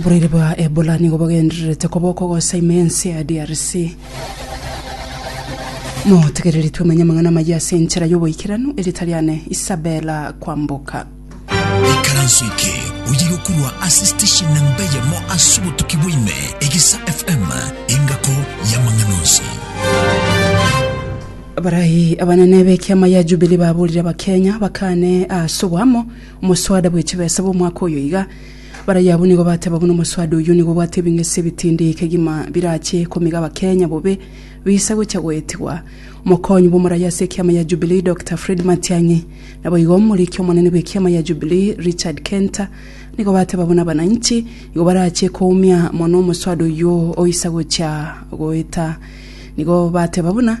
Oboraire bwa Ebola nigo bogendererete koba okogosa ime ense ya DRC. Motegereri twemenye amang'ana amayia ase enchera y'oboikeranu ere tari ane Isabella kwamboka. ikaranso eke oye gokurwa ase station namba eyemo ase obotuki bwa ime egesa fm engako y'amang'ana onsi Abaraai abanene b'ekiama ya Jubilee baburire Abakenya bakane ase oboamo Omoswada bwe chibesa bw'omwaka oyo iga, Baraia abwo nigo bateba buna omoswada oyio nigo obwate ebing'ese ebitindi kegima birache komiga Abakenya bobe bisa gocha goetigwa. Omokonyi bw'omoraia ase ekiama ya Jubilee Doctor Fred Matiang'i naboigo omoriki omonene bw'ekiama ya Jubilee Richard Kenta nigo bateba buna abananchi igo barache koumia mono omoswada oyio oisa gocha goeta. Nigo bateba buna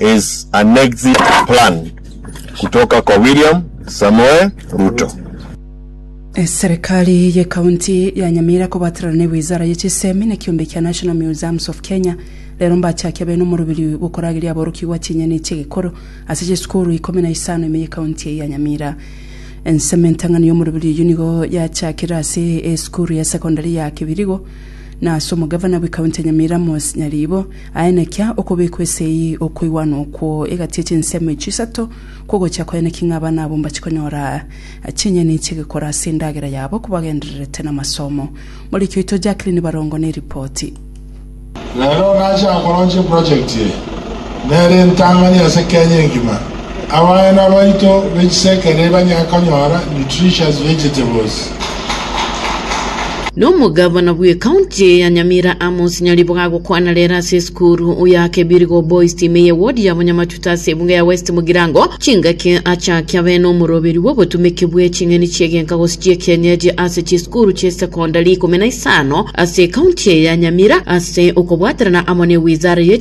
is an exit plan kutoka kwa William Samoei Ruto. Eserekari ye county ya Nyamira kobaterana ne wizara ye chisemi na kiombe kia National Museums of Kenya rero mbachakia bene omorobiri gokorageria aborokigwa chinyeni chi'egekoro ase chisukuru ikomi na isano ime ye county eye ya Nyamira. Ensemo entang'ani y'omorobiri oyio nigo yachakire ase esukuru ya secondary ya Kibirigo na ase omogavana bwe county ya Nyamira Moses Nyaribo Aye nekia okobekwa ase eyio okoigwana okwo egati ye chinsemo echio isato kw'ogochia kwaye naki ng'a abana abo mbache konyora chinyeni chi'egekora ase endagera yabo kobagendererete namasomo. Moriki oito Jacqueline Barongo neripoti. Rero nache akoronche eprojekti eye nere entang'ani ase Kenya engima. Abana baito be chisekere banyare konyora nutritious vegetables. Nomogavana bw'ecounty ya Nyamira Amos Nyariboga agokwana rero ase esukuru ya Kebirigo Boys timu eye ward ya Bonyamatuta ase ebunga ya West Mugirango chingaki achaki abe nomoroberi bw'obotumeki bwe ching'eni chi'egenka gose chi'ekienyeji ase chisukuru chie secondary ikomi na isano ase ecounty eye ya Nyamira ase okobwaterana amo ne Wizara ye